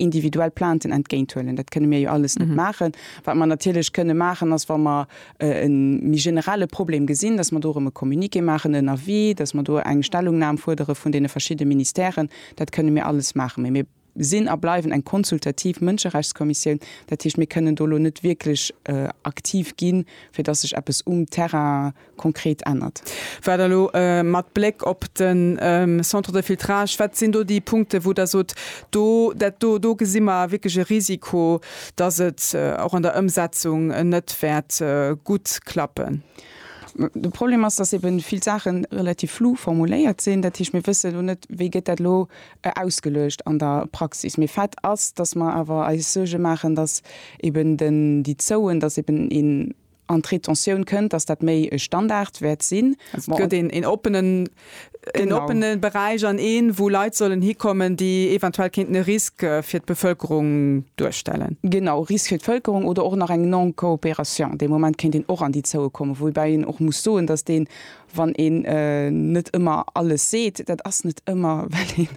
individuell Plainten entgéint huelen. Dat kënne mir jo alles net mhm. maachen. Wat man natierlech kënne maachen, ass wa mer äh, en mi generelle Problem gesinn, dass man dorem e Kommuniqué maachen en Avis, dass man do eng Stellungnam fuerdere vun deene verschiedene Ministèren, dat kënne mir alles maachen. Mee mir sinn a bleiwen eng konsultativ Mënscherechtskommissioun, dat hicht mir kënnen dolo net wierklech äh, aktiv ginn, fir dass sech eppes um Terrain konkret ännert. Wat elo mat Bléck op de Centre de filtrage, wat sinn do déi Punkte wou Der sot, do dat do, do gesi mer wierklech e Risiko, datt et och an der Ëmsetzung net wäert gutt klappen? De Problem ass, datt ebe vill Saache relativ flou formuléiert sinn. Dat heescht mir wësse elo net, wéi gëtt dat elo ausgeluecht an der Praxis. Mee Fait ass, datt mer awer eis Suerge maachen, datt eben déi Zouen, datt eben een an d'Retentioun kënnt, dass dat méi e Standard wäert sinn. Also et gëtt een, een oppenen, een oppene Beräich an een, wou Leit sollen hikommen, déi eventuell kéinten e Risk fir d'Bevëlkerung duerstellen. Genau, Risk fir d'Vëlkerung oder och nach eng Non-coopération. Dee Moment kéint een och an déi Zoue kommen. Woubäi een och muss soen, dass deen, wann een net ëmmer alles seet, dat ass net ëmmer, well een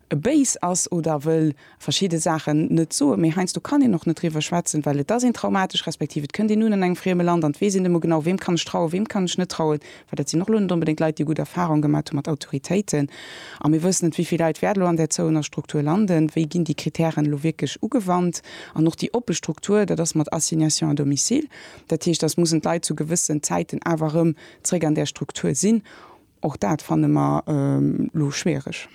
e béis ass oder wëll verschidde Saachen net soen, mee heiansdo kann een och net driwwer schwätzen, well et ass een traumatesch, respektiv et kënnt een un an engem frieme Land an et weess een net emol genau, weem kann ech trauen, weem kann ech net trauen, well dat sinn och elo net onbedéngt Leit, déi gutt Erfahrung gemaat hu mat Autoritéiten. A mir wëssen net, wéi vill Leit wäert elo an där zouener Struktur landen, wéi ginn déi Kritären elo wierklech ugewannt. An och déi oppe Struktur, dat ass mat Assignation à domicile, dat heescht, dass mussen d'Leit zu gewëssen Zäiten awer erëm zréck an där Struktur sinn, Och dat fanne mer elo schwiereg.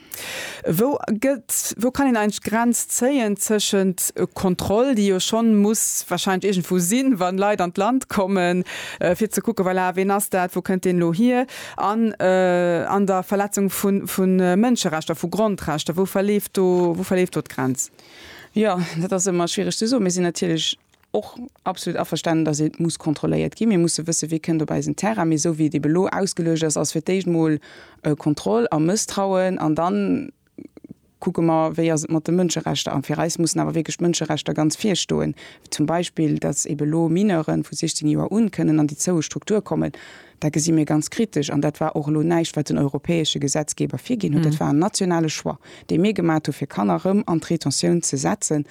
Wou gëtt, wou kann een eigentlech d'Grenz zéien tëschent Kontroll, déi jo schonn muss wahrscheinlech iergendwou sinn, wann Leit an d'Land kommen, fir ze kucken, voilà, ween ass dat, wou kënnt deen elo hier, an an der Verletzung vu Mënscherechter, vu Grondrechter? Wou verleeft do, wou verleeft do d'Grenz? Jo, dat ass ëmmer schwiereg ze soen. Mir sinn natierlech och absolut averstanen, dass et muss kontrolléiert ginn. Mir musse wëssen, wee kënnt op eisen Terrain. Mee esou wéi et ebe elo ausgeluecht ass, ass fir d'éischt emol Kontroll a Mësstrauen an da kucke mer, wéi ass et mat de Mënscherechter. A fir eis mussen awer wierklech d'Mënscherechter ganz vir stoen. Zum Beispill, dass ebe elo Mineuren vu 16 Joer un kënnen an déi zoue Struktur kommen. Dat gesi mir ganz kritesch, an dat war och elo näischt, wat den europäesche Gesetzgeber virginn huet. Dat war en nationale Choix, dee mir gemaat hu fir Kanner erëm an d'Rétentioun ze setzen,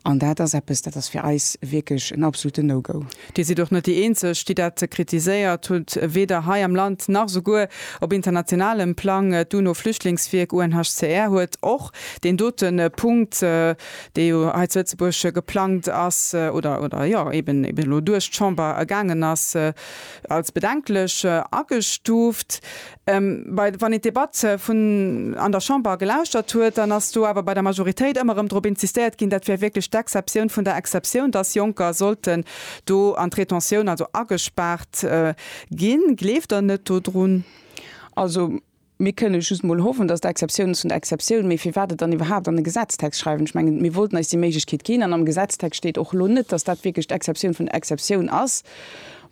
an dat ass eppes, dat ass fir eis wierklech en absoluten No-Go. Dir sidd och net déi Eenzeg, déi dat kritiséiert hutt. Weder hei am Land nach souguer op internationalem Plang. D'UNO-Flüchtlingswierk, UNHCR, huet och deen dote Punkt, dee jo hei zu Lëtzebuerg geplangt ass oder, oder jo eben, eben elo duerch d'Chamber gaangen ass, als bedenklech agestuuft. Bei, wann een d'Debatt vun an der Chamber gelauschtert huet, dann ass do awer bei der Majoritéit ëmmer erëm drop insistéiert ginn, dat wär wierklech d'Exceptioun vun der Exceptioun, dass Jonker sollten do an d'Rétention, also agespaart ginn. Gleeft Der net dodrun? Also, Mir kënnen just emol hoffen, dass et Exceptiounen zu den Exceptiounen, mee firwat et dann iwwerhaapt an e Gesetztext schreiwen? Ech mengen, mir wollten eis déi Méiglechkeet ginn, an am Gesetztext steet och elo net, dass dat wierklech d'Exceptioun vun der Exceptioun ass.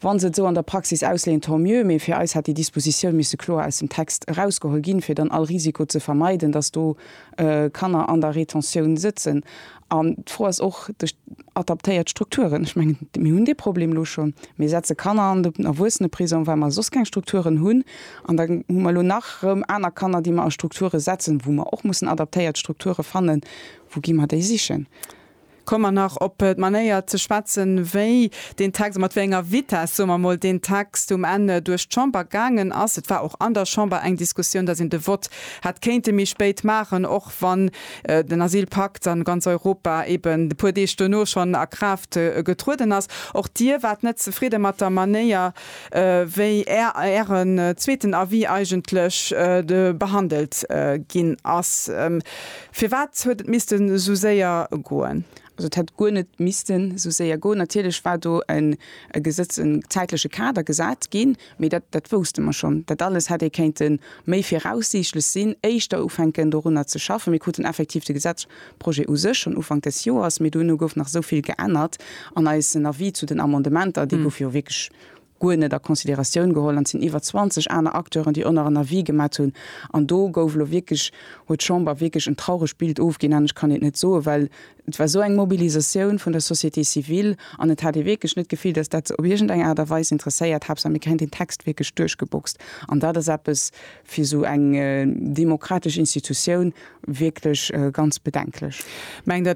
Wa se et esou an der Praxis ausleeën, tant mieux, mee fir eis hätt déi Dispositioun misse kloer aus dem Text erausgeholl ginn, fir dann all Risiko ze vermeiden, dass do Kanner an der Retentioun sëtzen. An d'Fro ass och duerch adaptéiert Strukturen, ech mengen, mir hunn dee Problem elo schonn, mir setze Kanner an den Erwuesseneprisong, well mer soss keng Strukturen hunn, an da hu mer elo nach erëm aner Kanner, déi mer a Strukture setzen, wou mer och mussen adaptéiert Strukture fannen. Wou gi mer déi sichen? Komme mer nach op d'Manéier ze schwätzen, wéi deen Text a mat wéi enger Vitess, soe mer mol, deen Text um Enn duerch d'Chamber gaangen ass. Et war och an der Chamber eng Diskussioun, dass een de Vott hätt kéinte méi spéit maachen, op, wann den Asylpakt an ganz Europa eben e puer Deeg duerno schonn a Kraaft getrueden ass. Och Dir waart net zefridde mat der Manéier, wéi Ären zweeten Avis eigentlech behandelt ginn ass. Firwat huet et missten esou séier goen? Also et hätt guer net missten esou séier goen. Natierlech war do e Gesetz, en zäitleche Kader gesat ginn. Mee dat, dat wousste mer schonn. Dat alles hätt ee kéinte méi viraussiichtlech sinn, éischter ufänken dorunner ze schaffen. Mir kruten effektiv de Gesetzprojet u sech schonn Ufank des Joers, mee duerno gouf nach esou vill geännert an eisen Avis zu den Amendementer, dee gouf jo wierklech guer net a Consideratioun geholl an et sinn iwwer 20 aner Acteuren, déi och nach en Avis gemat hunn an do gouf elo wierklech, huet d'Chamber wierklech en trauregt Bild ofginn an ech kann et net soen, well Et war esou eng Mobilisatioun vun der Société civile an et hat ee wierklech net d'Gefill, datt dat se op iergend eng Aart a Weis interesséiert. Haaptsaach mir kréien deen Text wierklech duerchgeboxt an dat ass eppes fir esou eng demokratesch Institutioun wierklech ganz bedenklech. Mengt Der,